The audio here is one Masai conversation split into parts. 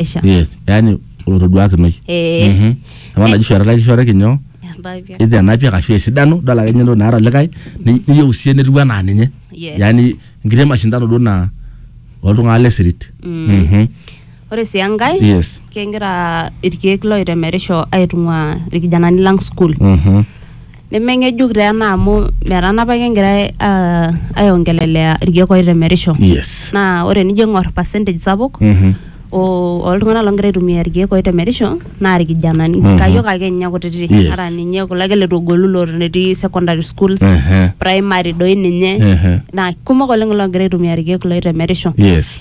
pesha yes yani olotoduakinoi Eh. Mhm. apa naji shu etalaki shoreki nyoo Entapia. idhi anapia kashu esidano idol ake ninye entoki naata likae ni- niyieu sie netiu anaa ninye Yes. yani nkiti mashindano duo naa oltung'anak le sirit Mhm. ore sii enkae yes kegira irkeek loitemerisho aitung'ua irkijanani lang school Mhm. Nemeng'ejuk taa ena amu metanapa ake egirai ah, aiongelelea irkeek oitemerisho. Yes. Naa ore enijo aing'or percentage sapuk Mhm. o- oltung'anak loogira aitumia irkeek oitemerisho naa irkijanani. Mhm. Kayiok ake ninye kutitik. Yes. Ata ninye kulo ake leitu egolu loton etii secondary schools, Ehe. primary doi ninye. Ehe. Naa kumok oleng loogira aitumia irkeek loitemerisho. Yes.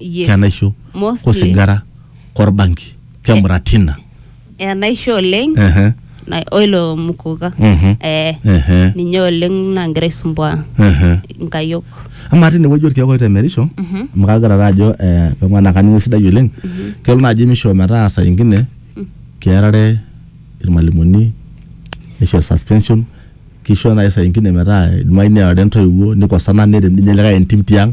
Yes. kenaisho Mostly. kosigara korbanki kemuratina enaisho oleng Ehe, na- oilo mukuka Mhm. eh, ehe, ninye oleng nagira aisumbua ehe. nkayok amaa tine wueji orkeek oitemerisho amu kagira taa ajo eh, keng'uan naa kaning'u esidai oleng kelo naaji misho metaa saa ingine kearare irmalimuni nisho suspension kisho naaji saa ingine metaa idimayu nearare intoiwuo nikosana nerem ninye likae entim tiang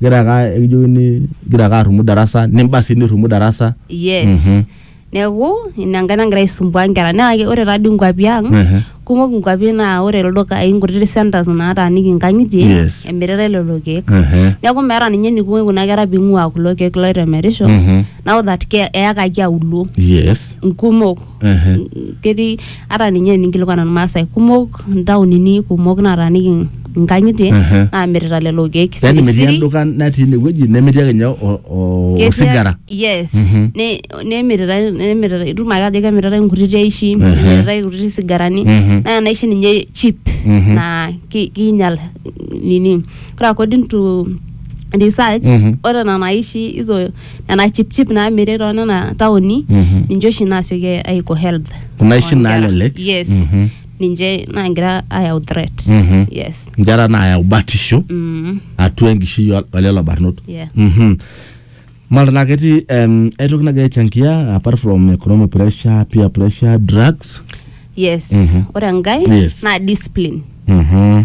igira ake ekijokini igira ake arrumu darasa nimba sii nirrumu darasa yes Mhm. neeku ina enkae nagira aisumbua nkera naa ke- ore taadii nkuapi ang Ehe. kumok nkuapi naa ore ildukai nkutiti centers naataaniki nkang'itie Yes. emiritae lelo keek Ehe. neeku meeta ninye eniko kuna kera ping'ua kulo keek loitemerisho Mhm. now that ke- eyakaki auluo yes nkumok Ehe. ketii ata ninye eninkilikuan irmaasai kumok ntaonini kumok nataaniki nkang'itie Ehe. naamirita lelo keek yani metii sirisiri. enduka natii inewueji nemetii ake ninye o- o- Ketii- osigara yes Ne- nemiritae nemiritae itum ake ajo kemiritae nkutiti aishi nemiritae nkutiti sigarani Mhm. naa enaishi ninye cheap Mhm. naa ki- kiinyal nini ore according to research Mhm. ore nena aishi hizo nena chipchip naamiri too nena taoni Mhm. ninche oshi naasioki aiko health Kuna oshi oonkera. naalelek. yes Mhm. ninche naagira ayau threat Mhm. yes nkera naayau batisho mm, atua enkishui o- olelo barnot yeah. Mhm. Mara naa ketii em, ai toki nagira aichangia apart from economic pressure, peer pressure, drugs. yes Mhm. ore enkae Yes. naa discipline Mhm.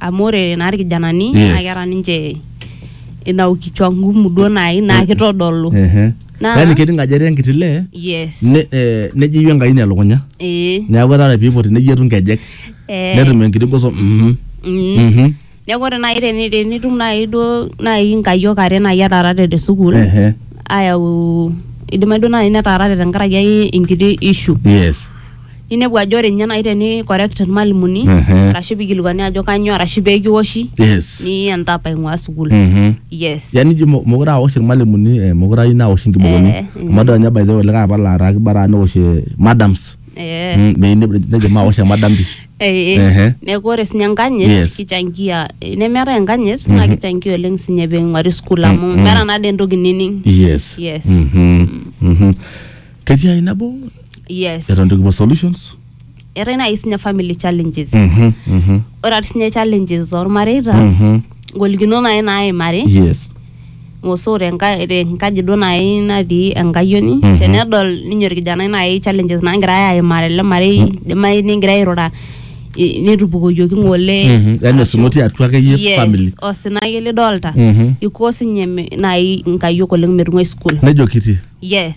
amu ore naa irkijanani Yes. naa keeta ninche ina ukichwa ngumu duo nai naa kitodolu Ehe. Naa- Yaani kening ajo etii enkiti lee yes ne- eh, nejeyu enkai ina elukunya ee neeku etaa ore piipoti neyetu nkejek Eh. netum enkiti goso mhm, Mm. mhm. neeku ore nai teni- tenitum nai duo nai nkayiok are nai etaarate te sukuul Ehe. ayau idimayu duo nai netaarate tenkaraki ai enkiti issue Yes. ninepu ajo ore ninye naaji teni correct irmalimuni Ehe. arashu pikilikuani ajo kanyoo arashu pekiwoshi yes ni entap aing'ua sukuul Mhm. yes yani ijo mo- mokure awosh irmalimuni eh, mokure ayieu nawosh inkibokoni Eh, mm. amu adol ninye by the way olikae apa laataa kibaraa newosh eh, madams eh, Mm, meyieu ne- nejo mawosh emadam pi eh, eh. Ehe. neeku ore sinye enkanyit Yes. kichangia eh, nemeetae enkanyit naa kichangia oleng sinye ping'uari sukuul amu meeta nade entoki nining yes Yes. Mhm. Mhm. ketii ai nabo yes eton itu kipuo solutions eetae naaji sinye family challenges Mhm, mhm, ore ati sinye challenges ormareita mhm. ngolikinot naaji naimari yes ngosoo tenka- tenkaji duo naaji natii enkayioni Mhm. tenedol ninye orkijanai naaji challenges naagirae aimaa tele marei idimayu ningira airura i- netupukoyioki ng'ole Mhm, yaani osinoti atua akeyie Yes, family osina ake lidolta Mhm. iko sinye me- naaji nkayiok oleng metung'uai school nejo kiti yes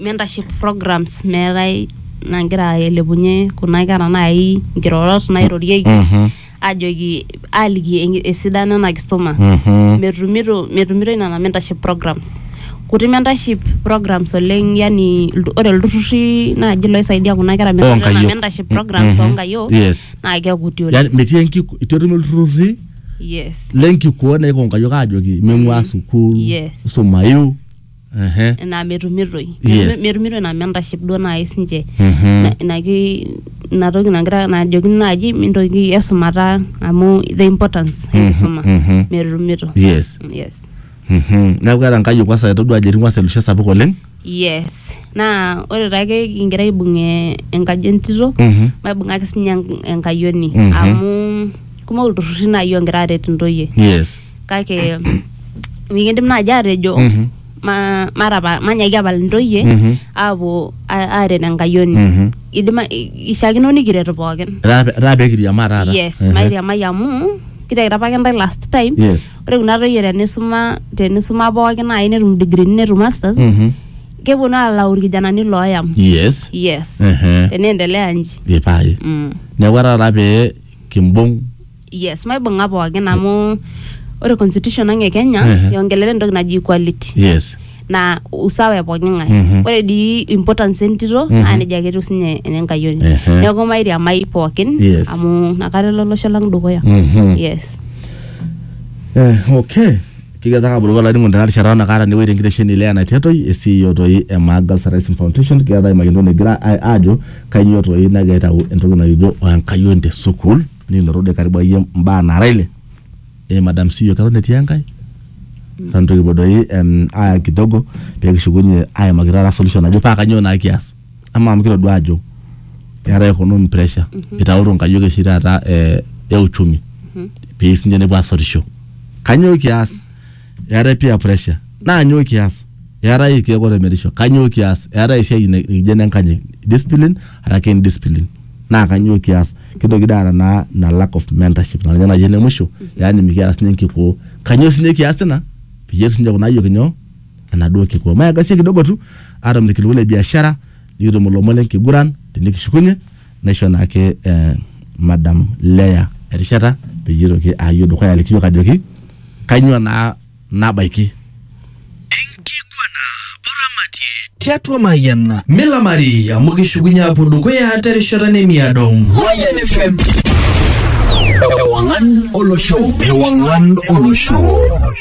mentorship programs meetae nagira ailepunye kuna kera naai nkirorot nairorieki Mhm. ajoki aliki en- esidano ena kisuma Mhm. metumito metumitoi nena mentorship programs kuti mentorship programs oleng yani iltu- ore ilturruri naaji loisaidia kuna kera menoto nena Oonkayiok. mentorship programs Mhm. oonkayiok Yes. naa kekuti oleng Yani metii enkiku itu etum ilturruri yes lenkikuo naiko nkayiok aajoki ming'ua sukuul Yes. sumayu Ehe. naa metumitoi Yes. metumitoi naa mentashe duo naaji sinche Mhm. Na- inaki inatoki nagira najoki naaji mintoki esumata amu the importance enkisuma mhm. metumito Yes. yes Mhm. neeku keeta nkayiok kwansa etodua ajo etii kwansa elushe sapuk oleng yes naa ore taake kigira aibung e- enkaji entito Mhm. maibungaki sinye enk- enkayioni Mhm. amu kumok ilturruri naaji ongira aret intoyie yes kake mikindim naaji aatejo Mhm. ma- matapa manyaki apal intoyie Mhm. aapuo a- aaret enkayioni Mhm. idima ishaakino nikiret pookin Etaa etaa pee kiriamaa taata. yes Ehe. mairiamai amu kitekita apake intae last time Yes. ore kuna toyie tenisuma tenisuma pookin naaji netum digrini netum masters Mhm. keponu alau irkijanani looyam Yes. yes Ehe. teneendelea nji Epae. mm. Neeku etaa taata pee kimbung yes maibung'a pookin amu ore constitution ang e kenya Ehe. iongelele entoki naji equality yes na usawa e pooki ng'ae Mhm. ore dii importance entito Mhm. naa nejia ake etiu sinye enenkayioni Ehe. neeku mairiamai pookin Yes. amu nakata elo olosho lang dukuya Mhm. yes Eh, okay kiketaka abulu olainingo tena rishata nakaata newuei tenkitesheni le ena tetoi esiio toi e Maa Girls Rising Foundation kiketaka imayianto negira a- aajo kainyoo toi nagira aitau entoki najo oenkayioni te sukuul nilotu de karibu ayie mbaa nara ile eh madam CEO keton etii enkae eton itu kipuo doi em aya kidogo pee kishukunyie aimaki taata solution naje paa kanyoo naa kias amaa amu kitodua ajo keetae economy pressure itauto inkayiok oshi taata eh e uchumi pee sinche nepuo asotisho kanyoo kias eetae peer pressure naa nyoo kias eetae irkeek otemerisho kanyoo kias eetae esiai na- nikijo ene nkanyit discipline araki indiscipline naa kanyoo kias kitoki dii aata naa ina lack of mentorship naa ninye naji ene musho yaani mikiata sinye enkikoo kanyoo sinye kias ina peyie etum sinye kuna ayiok inyoo enaduo kikoo maegasie kidogo tu atum irkiliku le biashara nikitum ilomon lenkiguran tenikishukunye naisho naake eh, madam Leah erishata peyie itoki ayio dukuya aliki yiok ajoki kainyoo naa nabaiki Enkiguana oramatie tiatua Mayian. Milamari amu kishukunye apuo dukuya terishata nemiado. Mayan FM. Ewangan Olosho. Ewangan Olosho.